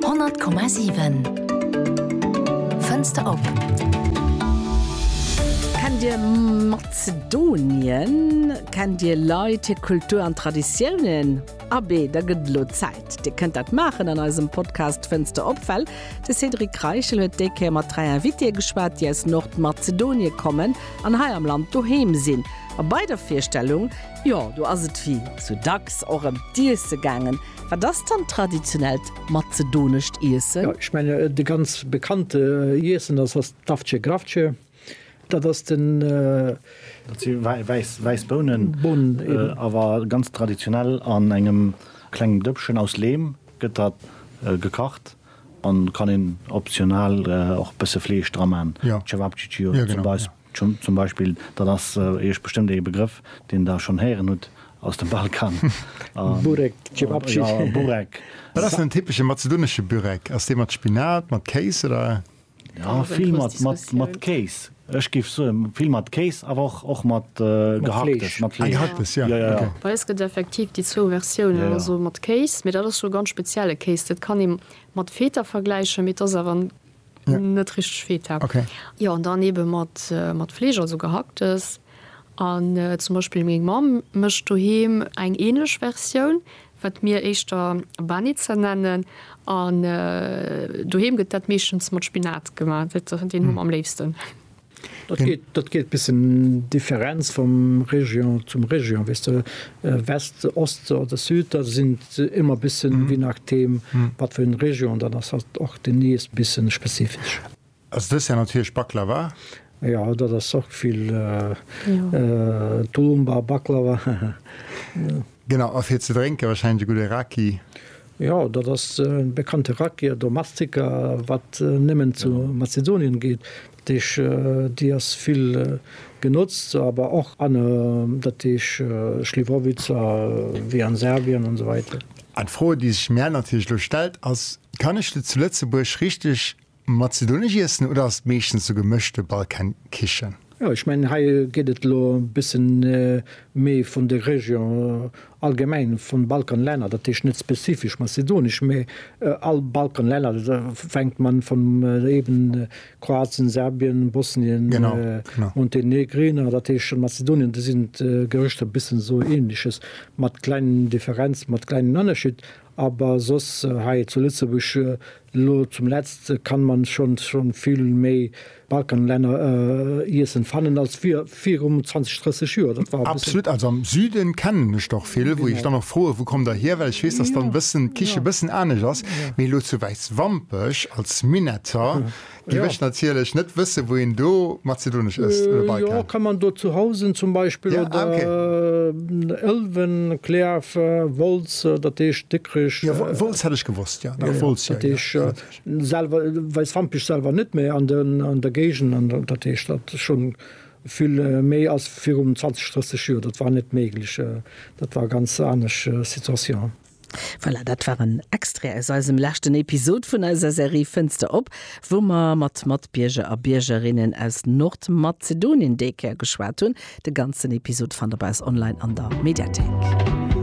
100,7 Fënster op. Kennt Dir Mazedonien? Kennt Dir Leit, hir Kultur an Traditiounen? Abee, da gëtt et elo Zäit, Dir kënnt dat maachen an eisem Podcast Fënster op, well de Cédric Reichel huet déi Kéier mat dräi Invitée geschwat, déi aus Nordmazedonie kommen an hei am Land doheem sinn. A bei der Virstellung Jo, do ass et wéi sou dacks och ëm d'Iesse gaangen. Wat ass dann traditionellt mazedonescht Iessen? Jo, ech menge de ganz bekannte Iessen ass ass d'Avce Gravce. Dat ass den. Dat si wäiss, wäiss Bounen. Bounen, eben. Awer ganz traditionell an engem klengem Dëppchen aus Leem gëtt dat gekacht an kann een optional och e bësse Fleesch dra man. Cevapcicio zum Beispill. Tschun zum Beispill, dat ass Iech bestëmmt ee Begrëff, deen Der schonn héieren hutt, aus dem Balkan. Burek, Cevapcici. Jo, Burek. Wat ass den typesche mazedonesche Burek? Ass dee mat Spinat, mat Kéis oder? Jo, vill mat Kéis. Ech géif soen, vill mat Kéis, awer och och mat Gehacktes, mat Fleesch. Ah, Gehacktes, jo, ok. Bei eis gëtt effektiv déi zwou Versiounen, also mat Kéis, mee dat ass jo e ganz spezielle Kéis. Dat kann ee mat Feta vergläichen, mee et ass awer en. net richteg Feta okay jo an dann eben mat mat Fleesch also gehacktes an zum Beispill meng Mamm mecht doheem eng ähnlech Versioun wat mir éischter Banitzer nennen an doheem gëtt dat meeschtens mat Spinat gemaach, dat den hu mer am léifsten. Dat geet bis en Differenz vum Région zum Région, weess de, West, Ost oder Süd, da sinn ëmmer bissen, je nachdem wat fir eng Région dat ass, halt och den Iess bissen spezifesch. Ass dës Jahr natierlech Baklava? Jo, dat ass och vill Tulumba, Baklava. Genau, a fir ze drénken wahrscheinlech e gudde Raki? Jo, dat ass de bekannte Rakia domestica, wat nëmmen zu Mazedonien geet. Dat heesch, déi ass vill genotzt, awer och an, dat heesch Schliwowica, wéi an Serbien an esou weider. An d'Fro, déi sech mär natierlech elo stellt, ass, Kann ech de zu Lëtzebuerg richteg Mat Zidoneg iessen oder ass et meeschtens sou gemëschte Balkankichen? Jo, ech mengen hei geet et elo e bësse méi vun de Région allgemeng vun Balkanlänner, dat heescht net spezifesch mazedonisch, mä all Balkanlänner, fänkt man vun eben Kroatien, Serbien, Bosnien, Montenegrin, dat heescht Mazedonien, do sinn d'Gerichter e bëssen sou ähnliches, mat kleinen Differenzen, mat kleinen Ënnerscheed, awer soss hei zu Lëtzebuerg Lo zum letzt kann man schons schon vill méi Balkanlänner iessen fannen als virum 20, 30 Joer. Dat war e bëssen. Absolut, also am Süden kennen ech der vill, wou ech dann och froen, wou kommt der hier, well ech weess, dass dann bëssen d'Kichen bëssen anesch ass, mee lo zu Wäiswampech als Minnetter. Déi mécht natierlech net wësse wou een do mazedonesch ësst oder bei kann. Jo kann man do zu Housen zum Beispill oder Ëlwen, Klärf, Wolz, dat heescht Dikrech. Jo Wolz hätt ech gewosst jo. Dat Wolz jo. Dat heescht selwer Weißwampech selwer net mä an den an der Géigend an dat heescht dat schonn vill méi ass virum 20, 30 Joer. Dat war net méiglech. Dat war ganz anesch Situation. Voilà, dat war en Extrait aus eisem leschten Episod vun eiser Serie Fënster op, wou mer mat Matbierger a Biergerinnen aus Nordmazedonien déi Kéier geschwat hunn. De ganzen Episod fannt der bei eis online an der Mediathéik.